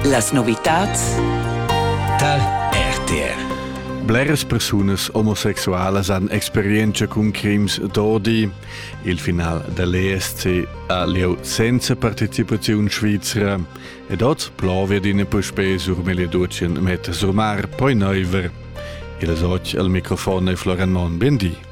Las novitads tar RTR. Bleras persunas omosexualas han experienza cun crims d'odi. Il final dell'ESC ha lieu senza partecipaziun svizra ed oz plovia d'ina puspè sur Meliadutschen metter sur mar, poi neuver. Il oz al microfon è Floran Mon. Bendì.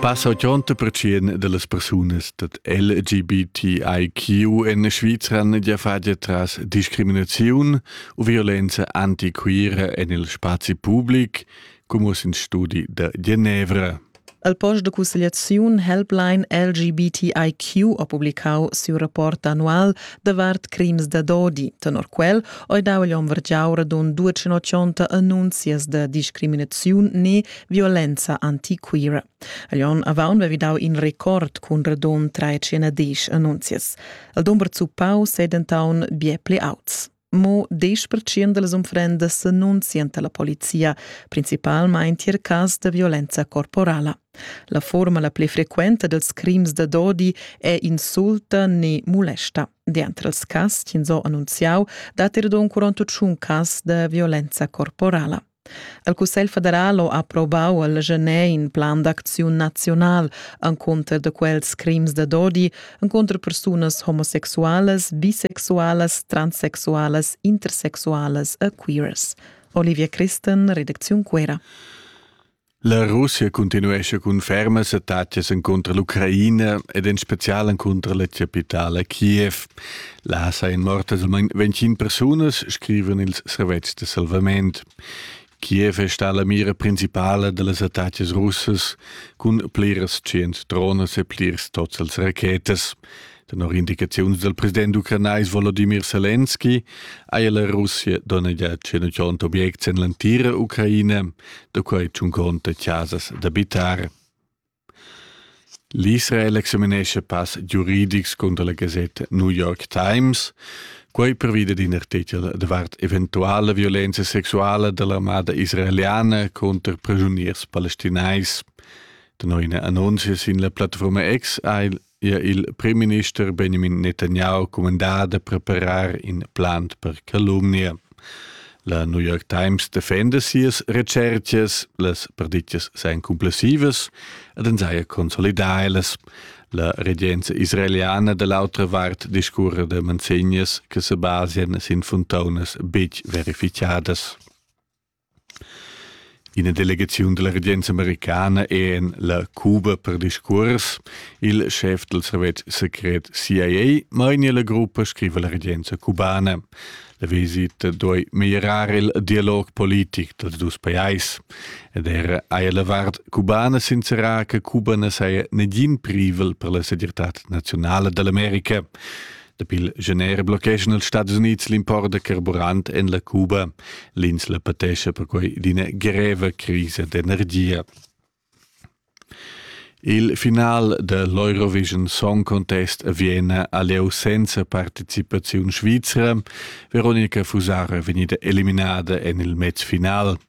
Passa 80% dellas persunas dat LGBTIQ in Svizra ja fagia tras discriminaziun u violenza antiquira en il spazi public, come in studi da Genevra. El post de cussegliaziun Helpline LGBTIQ ha publicau siu rapport annual davart crims da dodi. Tenor quel ei dau igl hom vergiau radund 280 annunzias da discriminaziun ne violenza antiquira. Agl onn avaun vevi dau in record cun radund 310 annunzias. El dumber zuppau sedentaun bie pli auts. Mo 10% dals unfrendas s'annunzian alla polizia, principalmein tier cas da violenza corporala. La forma la pli frequenta dels crims da dodi è insulta ne molesta. Dentro els cas, ins ho annunziau, dat er don 41 cas da violenza corporala. El Cussegl federal ho approvau al Genet in plan d'acziun naziunal encunter da quels crims da dodi encunter persunas homosexualas, bisexualas, transsexualas, intersexualas e queers. Olivia Christen, Redakziun Cuera. La Russia continuescha cun fermas attacas encunter l'Ucraina ed en special encunter la capitala Kiev. Là sajan mortas almain 25 persunas, scrivan ils servetschs de salvament. Kiev è stata la mira principale de las attacas russas cun pliras cient drones e plirs tots als rachetas. Tenor indicaziuns dal president ucranais Volodimir Selenski haja la Russia donnegià 100 objects en l'entira Ucraina, da quai tschun conta chasas d'abitar. L'Israel examinescha pass giuridics cunter la gasetta New York Times, quai pervi dad in artichel davart eventuala violenza sexuala da l'armada israeliana cunter pregiuniers palestinais. Tenor ina annunzia sin la plattafurma X ha il ha il primminister Benjamin Netanyahu cumandà da preparar in plan per calumnia. La New York Times defenda sias recercas, las perdittas seien complessivas ed en saja consolidailas. La regenza israeliana da l'autra vart discurre de manzegnas che se basian sin fontaunas bitg verificadas. Ina delegaziun dalla regenza americana è en la Cuba per discuors. Il schef dal servetsch secret CIA mainia la gruppa, scriva la regenza cubana. La visita doi meglierar il dialog politic dals dus pajais. Ed era haja la vart cubana sincerà che Cuba na saja negin privel per la segirtad nazionale dell'America. Dapi il gener blocheschan els Stadis Unids l'import da carburant en la Cuba. L'insla patescha perquai d'ina greva crisa d'energia. Il final de l'Eurovision Song Contest a Vienna ha lieu senza participaziun svizra. Veronica Fusara è vegnida eliminada en il mezfinal.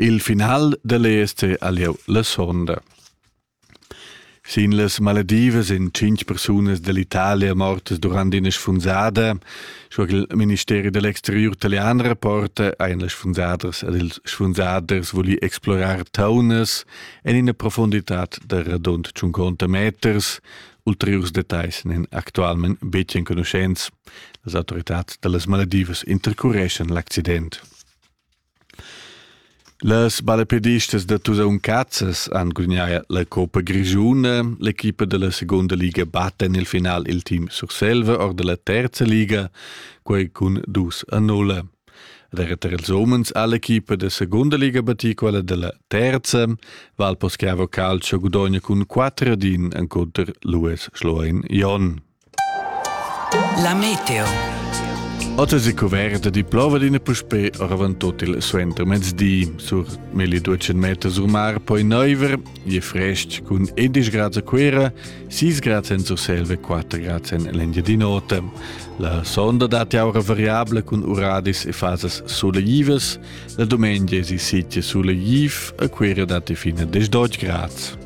Il final dall ESC ha lieu la sonda. Sin las maledivas ein tschintg persunas dall'Italia mortas durant ina sfunzada. Sco che il ministeri dell'exteriur italian rapporta, ein las sfunzaders ed ils sfunzaders voli explorar taunas en ina profunditad da radund 50 meters. Ulteriurs detagls n'en actualment betg enconuschents. Las autoritads dallas Maledivas intercureschan l'accident. Las ballapedistas da Tusaun Cazzas han gudagnà la coppa grischuna. L'equipa da la segunda liga batta en il final il team Surselva or da la terza liga, quai cun dus a null. Era tar ils umens ha l'equipa da segunda liga battì quella da la terza. Valposchiavo Calcio gudogna cun 4 ad 1 encunter l'US Schloen Jon. La meteo. Otta si coverta di plova d'ina puspè oravant tot il suenter mezdi. Sur meli 200 meter sur mar poi neuver, je frestg cun 11 grad a Cuera, 6 grad en Surselve, 4 grad en l'Endia di nota. La sonda dati aura variabile cun uradis e fasas solegivas, la domenica si sitio solegif a Cuera dati fino a 18 grad.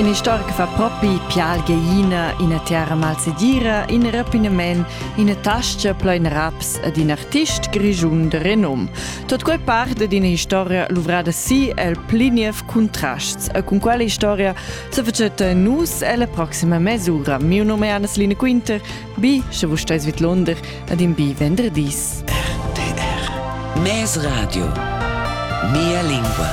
In istoric fa propi pial geiina, ina terra malsedira, in rapinament, ina tascha plein raps ed in artist grischun de renom. Tot quei parte d'ina historia luvrada si el pli niev contrasts e con quella historia se facete nus ella proxima mesura. Mio nome è Anna-Celine Quinter, Bi, sche vus steis vidlonder ad in bi venderdis. RTR Mes Radio. Mia lingua.